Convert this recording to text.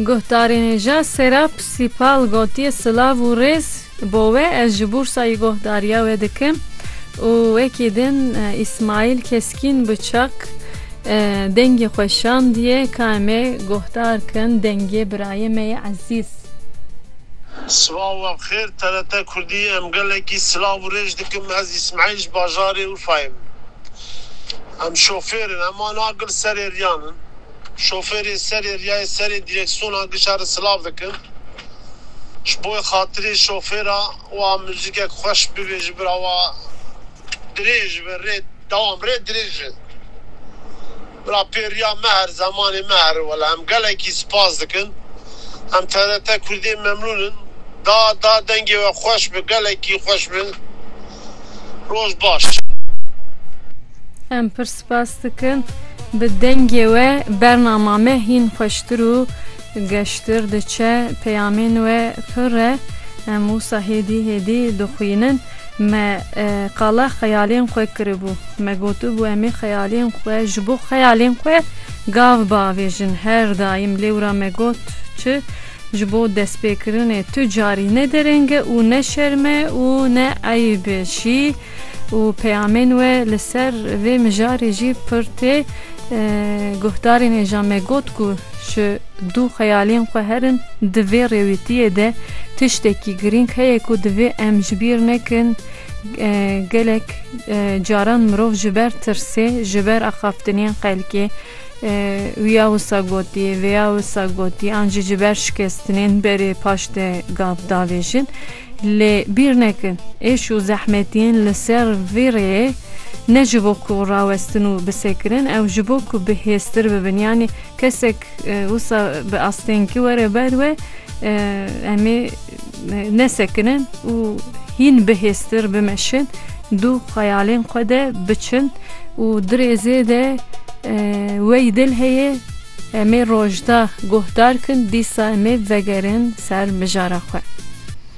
Guhdarê nêja Serap Sîpal gotiye silav û rêz bo we ez ji Bûrsayî guhdariya we dikim û wekî din Îsmaîl Keskîn bi çak dengê xwe şandiye ka em ê guhdar kin dengê birayê me yê ezîz. Sibav we bi xêr TRT Kurdî em gelekî silav û rêj dikim ez Îsmaîl ji bajarê Urfayê me. Em şofêr in, em ana gil serê riyan in. Şofêrê serê riyayê serê direksiyona gişa re silav dikin. Ji bo xatirê şofêra wa muzîkek xweş bibê ji bira wa dirêj be rê dewam rê dirêj e. Bira pê riya me her zemanê me here wela em gelekî sipas dikin. Em tdt kurdê memnûn in. Da da dengê we xweş be gelekî xweş be. Roj baş. Em pir spas dikin. Bi dengê we bernama me hîn xweştir û geştir diçe. Peyamên we pir e. Em wisa hêdî hêdî dixwînin. Me qala xeyalên xwe kiribû. Me gotibû em ê xeyalên xwe ji bo xeyalên xwe gav biavêjin. Her daîm lêwra me got çi Ji bo destpêkirinê tu carî ne derenge û ne şerme û ne eyb şî û peyamên we li ser vê mijarê jî pir tê. Guhdarên ê ja me got ku ji dû xeyalên xwe herin di vê rêwîtiyê de tiştekî girîng heye ku divê em ji bîr nekin, gelek caran mirov ji ber tirsê, ji ber axaftinên xelkê, Wiya wisa gotiye, vêya wisa gotiye, an jî ji ber şikestinên berê paş de gav davêjin. Lê bîr nekin, êş û zehmetiyên li ser vê rêyê ne ji bo ku rawestin û bisekirin, ew ji bo ku bi hêztir bibin. Yanî kesek wisa bi astênkî were ber we, em ê Nesekinin û hîn bihêztir bimeşin, du xeyalên xwe de biçin û dirêzê de wey dil heye em ê rojda guhdar kin dîsa em ê vegerin ser mijara xwe.